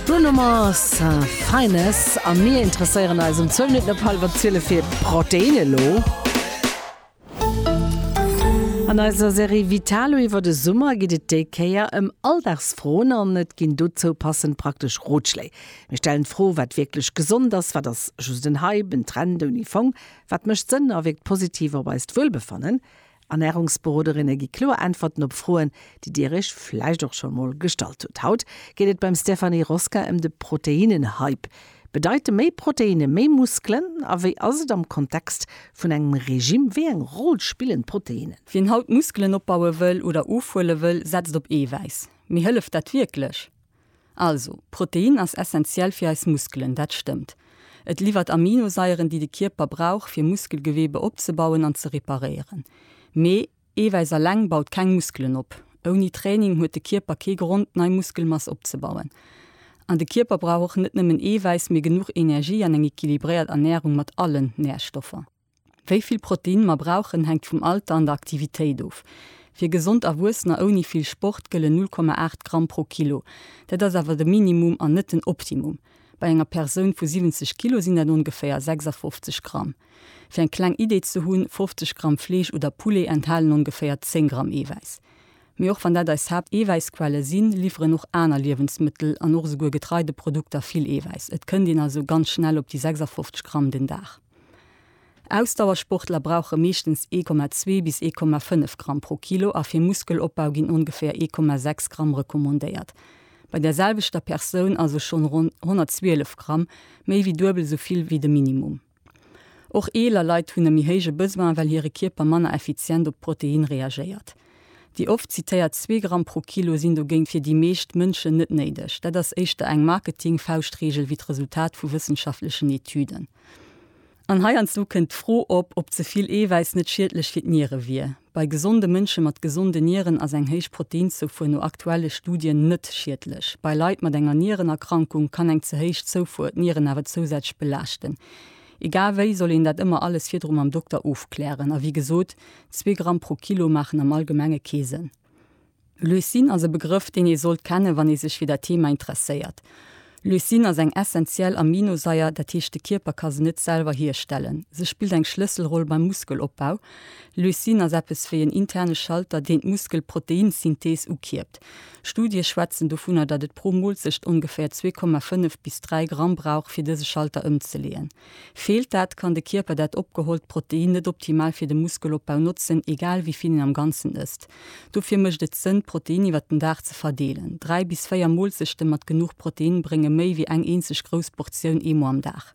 Bruno Mars, Finest, a mir interesséieren eis um zwou Minutten op hallwer zwielef fir Protein elo. An eiser Serie Vitalo iwwer de Summer geet et déi Kéier ëm Alldagsfroen an et ginn dozou passend praktesch Rotschléi. Mir stellen d'Fro, wat wierklech gesond ass, wat ass just en Hype, en Trend ouni Fong, wat mécht Sënn a wierkt positiv op eist Wuelbefannen? Ernärungsberoderinne gi kloer Äntwerten op Froen, déi Dir Iech vläicht och schonn emol gestallt hutt. Haut geet et beim Stéphanie Rosca ëm de Proteinnen-Hype. Bedeite méi Proteinne méi Muskelen? A wéi ass et am Kontext vun engem Regime? Wéi eng Roll spillen d'Proteinnen? Wien haut Muskelen opbaue wëll oder ofhuele wëll, setzt op Eewäiss. Mee hëlleft dat wierklech? Also, Protein ass essentiell fir eis Muskelen, dat stëmmt. Et liwwert Aminosaieren, déi de Kierper brauch, fir Muskelgewebe opzebauen an ze reparéieren. Mee Eewäiss alleng baut keng Muskelen op. Ouni Training huet de Kierper kee Grond, nei Muskelmass opzebauen. An de Kierper brauch och net nëmmen Eewäiss, mee genuch Energie an eng equilibréiert Ernärung mat allen Närstoffer. Wéi vill Protein mer brauchen, hänkt vum Alter an der Aktivitéit of. Fir gesond Erwuessener ouni vill Sport gëllen 0,8 Gramm pro Kilo. Dat ass awer de Minimum an net den Optimum. Bei enger Persoun vu 70 Kilo sinn dat ongeféier 56 Gramm. Fir eng kleng Idee ze hunn, 50 Gramm Fleesch oder Poulet enthalen ongeféier 10 Gramm Eewäiss. Mee och wann dat eis Haapt-Eewäissquelle sinn, liwweren och aner Liewensmëttel an och esouguer Getreideprodukter vill Eewäiss. Et kënnt een also ganz schnell op déi 56 Gramm den Dag. Ausdauersportler brauche meeschtens 1,2 bis 1,5 Gramm pro Kilo a fir Muskelopbau ginn ongeféier 1,6 Gramm recommandéiert. Bei der selwechter Persoun also schonn ronn 112 Gramm, méi wéi duebel esou vill wéi de Minimum. Och eeler Leit hunn e méi héije Besoin, well hire Kierper manner effizient op d'Proteinë reagéiert. Déi oft zitéiert zwee Gramm pro Kilo sinn dogéint fir déi meescht Mënschen net néideg. Dat ass éischter eng Marketing-Fauschtreegel wéi d'Resultat vu wëssenschaftlechen Etüden. An heiansdo kënnt d'Fro op, ob ze vill Eewäiss net schiedlech fir d'Niere wier. Bei gesonde Mënsche mat gesonde Nieren ass eng héich Proteinzoufuer no aktuelle Studien net schiedlech. Bei Leit mat enger Nierenerkrankung kann eng ze héich Zoufuer d'Nieren awer zousätzlech belaaschten. Egal wéi soll een dat ëmmer alles virdru mam Dokter ofklären. A wéi gesot, zwee Gramm pro Kilo maachen am Allgemenge kee Sënn. Leucin ass e Begrëff, deen ee sollt kennen, wann ee sech fir dat Thema interesséiert. Leucin ass eng essentiell Aminosaier, dat heescht de Kierper ka se net selwer hierstellen. Se spillt eng Schlësselroll beim Muskelopbau. Leucin ass eppes wéi en interne Schalter, deen d'Muskelproteinsynthees ukierpt. Studie schwätzen dovunner, datt et pro Moolzecht ongeféier 2,5 bis 3 Gramm brauch, fir dëse Schalter ëmzeleeën. Feelt dat, kann de Kierper dat opgehollt Protein net optimal fir de Muskelopbau notzen, egal wéi vill een am Ganzen ësst. Dofir mécht et Sënn, d'Protein iwwer den Dag ze verdeelen. Dräi bis véier Moolzechte mat genuch Protein brénge méi wéi eng eenzeg grouss Portioun eemol am Dag.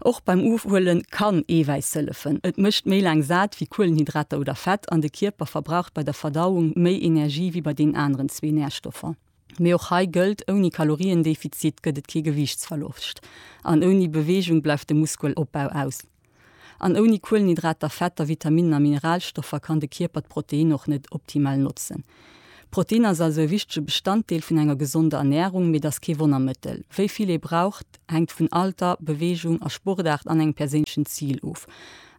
Och beim Ofhuele kann Eewäiss hëllefen. Et mécht méi laang sat wéi Kuelenhydrater oder Fett an de Kierper verbraucht bei der Verdauung méi Energie wéi bei deenen aneren zwee Närstoffer. Mee och hei gëllt, ouni Kaloriendefizit gëtt et kee Gewiichtsverloscht an ouni Beweegung bleift de Muskelopbau aus. An ouni Kuelenhydrater, Fetter, Vitaminnen a Mineralstoffer kann de Kierper d'Proteinnen och net optimal notzen. Protein ass also e wichtege Bestanddeel vun enger gesonder Ernärung, mee et ass kee Wonnermëttel. Wéi vill ee braucht, hänkt vun Alter, Beweegung a Sportaart an engem perséinlechen Zil of.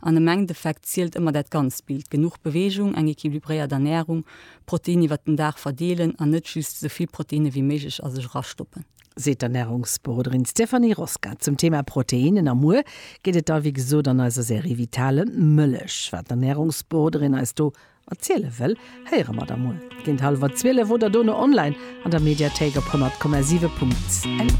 An am Endeffekt zielt ëmmer dat ganzt Bild, genuch Beweegung, eng equilibréiert Ernärung, Protein iwwert den Dag verdeelen an net just esou vill Proteine wéi méiglech a sech erastoppen. Seet d'Ernärungsberoderin Stéphanie Rosca zum Thema Proteinen. A muer geet et da wéi gesot an eiser Serie Vitale Mëllech. Wat d'Ernärungsberoderin eis do Erziele wëll, héiere mer da mol géint hallwer 12 oder dono online an der Mediathéik op 100,7.